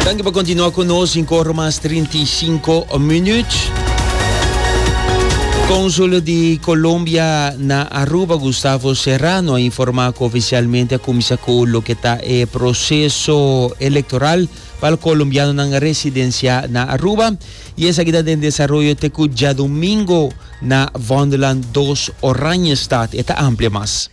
Danki pa kontinua ku nos in kor mas trinta i sinku minüt. Konsul di Kolombia na Aruba, Gustavo Serrano, a informá ku ofisialmente a kuminsá ku loke ta e proseso elektoral pa al kolombianonan residensiá na Aruba i esaki ta den desaroyo te ku djadumingu na Vondelland dos Oranjestad. E ta amplia mas.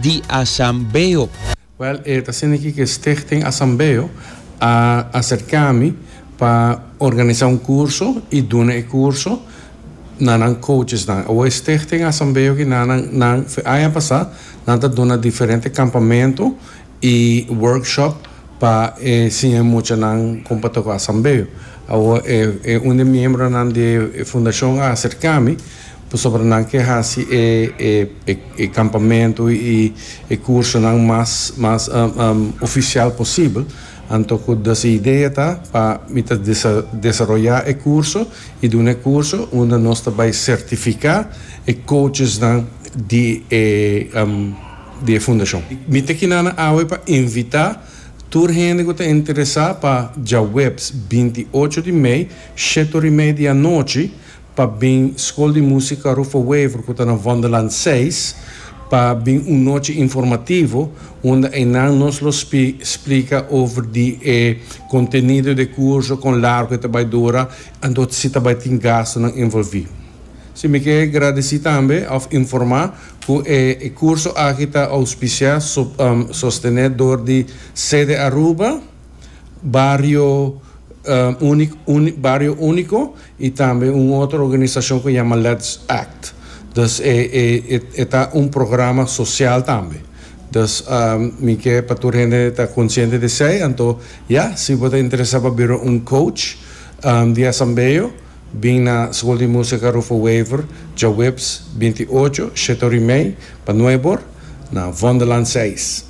di Asambeo. Well e ta haciendo aki cu e Stichting Asambeo a acerca mi pa organiza un curso y duna e curso na nan coachesnan. Awo e Stichting Asambeo aki na nan nan aña pasa nan ta duna diferente campamento y workshop. pa e siña e muchanan kon pa toká sambeo. Awor e e un di e miembronan di e fundashon a aserká mi pasobra nan ke hasi e e e e kampamentu i e kursonan mas mas ofisial posibel. Anto ku dese idea ta pa mi ta desa desaroyá e kurso i duna e kurso unda nos ta bai sertifiká e kouchesnan di e. di e fundashon. Mi ta kina nan awe pa invita tur hende ku ta interesa pa djaweps binti ocho di mei shetor i mei di anochi pa bin Skol di Musika Rufo Wever ku ta na Vonderland seis pa bin un nochi informativo unda einan nos lo splika over di e kontenido di e kurso kon largo e ta bai dura anto si ta bai tin gastonan envolvi. Si mi ke gradisi tambe òf informa. Ku e e kurso aki ta ouspisiá, sostené dor di Sede Aruba, Bario Unik Unik Bario Úniko i tambe un otro organisashon ku yama Let's Act. Dus e e e e ta un programa sosial tambe. Dus mi ke pa tur hende ta konsiente di esei. Anto ya, si bo ta interesá pa bira un coach di asambeo, Bin na School di Musica Rufo Wever djaweps binti i ocho, shete ora i mei, pa nuei bor, na Vonderland seis.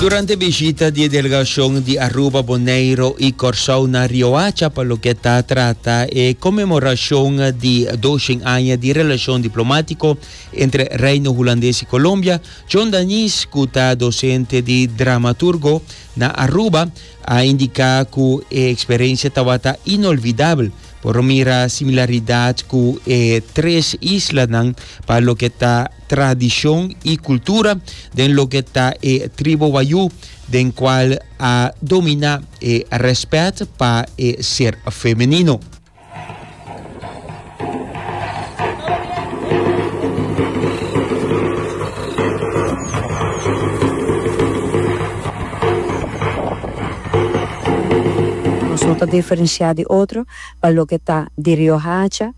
Durante bishita di e delegashon di Aruba, Boneiro i Kòrsou na Riohacha pa loke ta trata e konmemorashon di doshen aña di relashon diplomátiko entre Reino Hulandes i Kolombia, John Dañis cu ta docente di dramaturgo na Aruba a indica cu e experiencia tabata inolvidabel. Por mira similaridad cu e tres islanan pa loke ta tradicion y cultura den loke ta e tribo Wayuu den cual a domina e respet pa e ser femenino. Nos no ta diferenciá di otro pa loke ta di Riohacha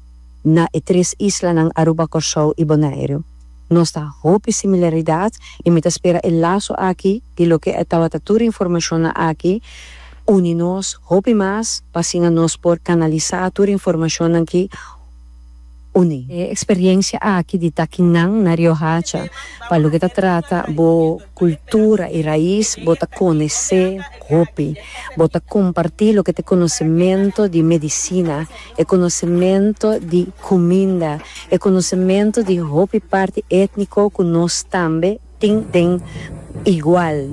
na e tres islanan Aruba, Kòrsou i Boneiru. Nos ta hopi similaridad y mi ta spera e laso aki di loke e tabata tur e informacionnan aki uni nos hopi mas pa asina nos por canalisa tur e informacionnan ki uni. E experiencia aki di takinan na Riohacha pa loke ta trata bo cultura y raiz bo ta conece hopi. Bo ta comparti loke ta e conocemento di medicina. e konosementu di kuminda, e konosementu di hopi parti étniko ku nos tambe tin den igual.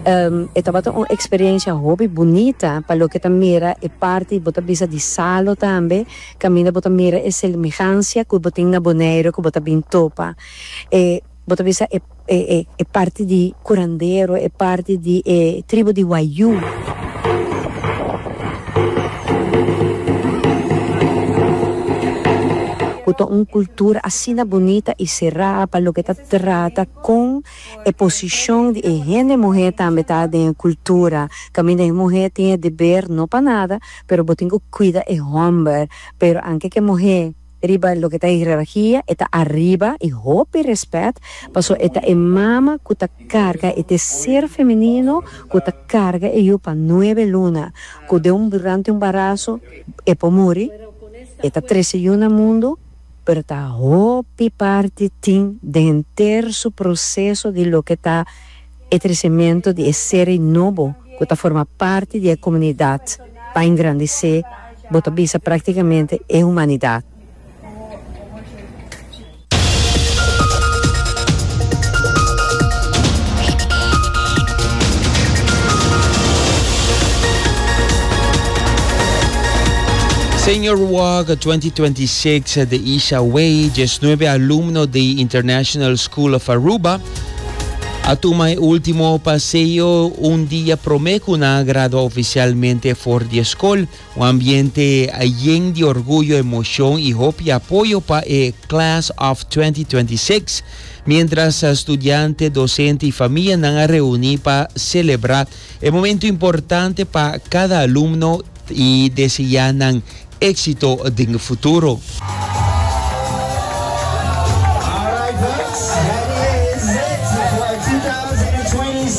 E tabata un eksperensia hopi bunita pa loke ta mira e parti bo ta bisa di Salo tambe kaminda bo ta mira e semihansia ku bo tin na Boneiru ku bo ta bin topa e Bo ta bisa e e parti di curandero, e parti di e tribu di Wayuu. Cu ta un cultura asina bunita y cera pa loke ta trata con e posicion di e hende muher tambe ta den e cultura. Caminda e muher tin e deber no pa nada pero bo tin cu cuida e homber pero anke ke muher. Riba loke ta hierarkia e ta ariba i hopi respet paso e ta e mama ku ta karga e te ser femenino ku ta karga e yu pa nuebe luna ku den durante un baraso e por muri e ta trese yu na mundu pero ta hopi parti tin den henter su proseso di loke ta E trecementu di e seri nobo cu ta forma parti di e comunidad ta engrandece, bo ta bisa practicamente e humanidad. Senior Walk 2026 The Isha Way, diesnuebe alumno di International School of Aruba A tuma e ultimo paseo un dia prome cu nan a gradua oficialmente for di e scol. Un ambiente yen di orguyo, emocion y hopi apoyo pa e Class of 2026. Mientras studiante, docente y famia nan a reuni pa celebra e momento importante pa cada alumno. I deseá nan éksito den e futuro.